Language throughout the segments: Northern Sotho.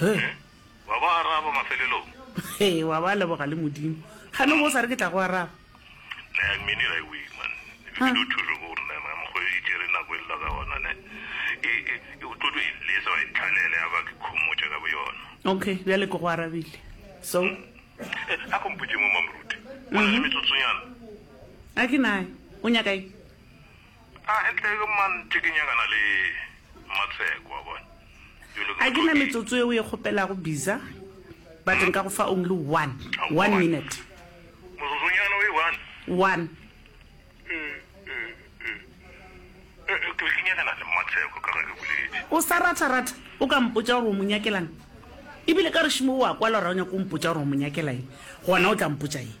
He. Wa ba araba mafelelong. He, wa ba leboga le Modimo. Ga no bo sa re ke tla go araba. Na ya mmini ra iwe man. Ke do thuso go rena ma mo go e jere na go lla ka ona ne. E e e o tlotlo e le so e tlhalele ya ba ke khomotša ka boyona. Okay, bja le ke go arabile. So. Eh, a go mpotše mo mamruti. Go na le metsotsonyana. A ke nae. O nyaka eng? A e tle ke man tše ke nyakana le Matsheko a bona. You look A ke na metsotso yeo e kgopelago biza but nka go fa only one, one minute. Motsotsonyana o e one? One. Eh, eh, eh, ke be ke nyakana le Matsheko ka ge ke boletše. O sa ratha ratha o ka mpotša gore o mo nyakelang? Ebile ka rešimo o a kwala gore ga o nyake go mpotša gore o mo nyakela eng, gona o tla mpotša eng?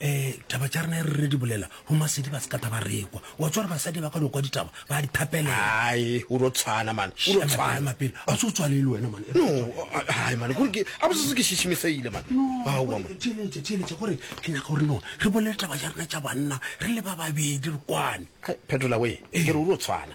um taba tša rena e re re di bolela go masedi ba sekata ba rekwa wa tsware basadi ba ka no kwa ditaba ba di thapelela ae o ro tshwana mane o ro tshwana mapele a se o tswalele wena mane no ae mane gore ke a bosese ke šišimiseile mane noeletša theeletša gore ke nyaka gore no re bolele taba tša rena tša banna re le ba babedi re kwane phetola we ke re o ro tshwana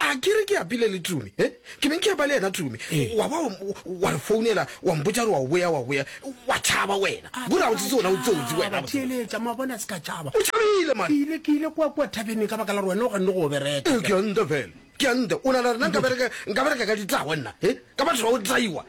a ke re ke apile le tumi e ke beng ke apa le yena tumi wa ba wa re founela wa mpotsa re wa o boya wa boya wa tšhaba wena kore o tsetse ona o tsotsi wenaeletsa ma bona se ka tšhaba o tšhabile ma ile ke ile kwa kwa thabene ka baka la re wena o ganne go o bereka ke a nta fela ke a nta o na le rena nka bereka nka bereka ka ditlawa nna e ka batho ba o tlaiwa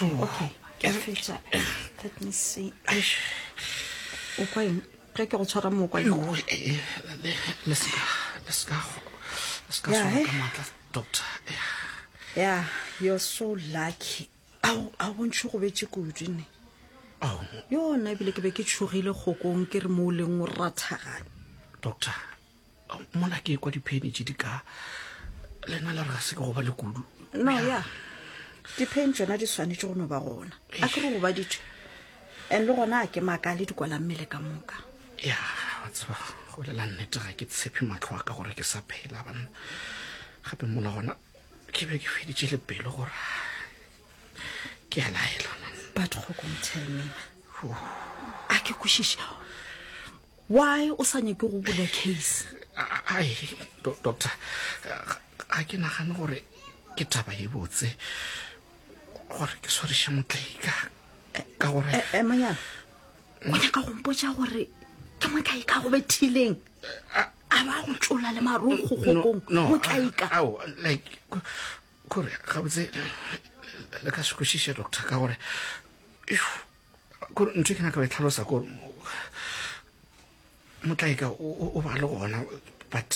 okay ke a fetša let me see o kwa eng ge ke go tshwara mo o kwa eng doctor ya you're so lucky ao a bontšhe go betse kudu ne yona ebile ke be ke tshogile kgokong ke re mo o leng o rathagane doctor mona ke kwa diphenitše di ka lena le re ga se ke go ba le kudu no ya dipheni tsona di swanetše go no ba gona a ke go goba ditšwe and le gona a ke maaka le dikwalang mmele ka moka ya wa tseba go lela nnete ga ke tshepe matlho a ka gore ke sa phela banna gape mola gona ke be ke feditše le pelo gore ke a laela batho go komtelmena a ke kwešiša Why o sa nyake go bula case? Ai, do- doctor, ga- ga ke nagane gore ke taba e botse gore ke swariše motlaika ka gore Eh, eh, monyana o nyaka go mpotša gore ke motlaika go bethileng a ba go tšola le marong go gokong motlaika ao like ko- kore gabotse le ka se kwešiše doctor ka gore Eww, kore ntho e ke nyaka go e tlhalosa kore motlaeka o ba le gona but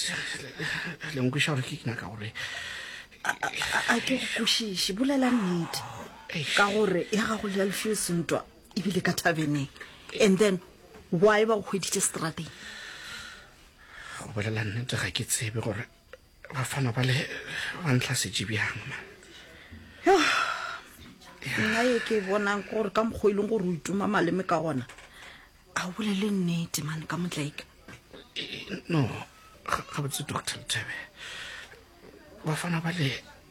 lenkweša gore ke nyaka gore a ke go kwešiše bolela nnete ka gore ya gago le ya lefio sentwa ebile ka thabeneng and then why ba go hweditše strateng go bolela nnete ga ke tsebe gore bafana ba le ba ntlhasetše bjang man Yo, nna ye ke e bonang ke gore ka mokgwa e leng gore o ituma maleme ka gona a o bolele nnete mane ka motlaika no ga- gabotse doctor lethebe bafana ba le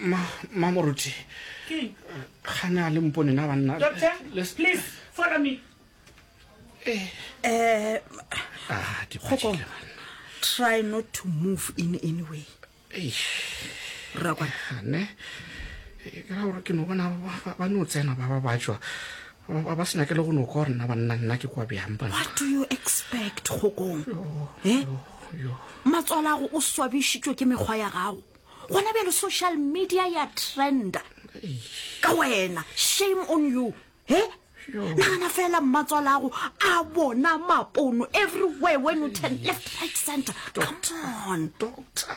Ma, ma moruti. Ke. Gana le mpone na banna. Doctor, Let's... please follow me. Eh. Eh. Ah, di Kgoko. Try not to move in any way. Eh. Rakwa. Ne. Eh, ke ra gore ke no bona ba no tsena ba ba batswa ba sena ke le go no kwa rena ba nna nna ke kwa bjang ba what do you expect gokong eh matswalago o swabišitšwe ke mekgwa ya gago gona bjalo social media ya trenda ka wena shame on you he nagana fela mmatswala ago a bona mapono everywhere when you turn left right center come on doctor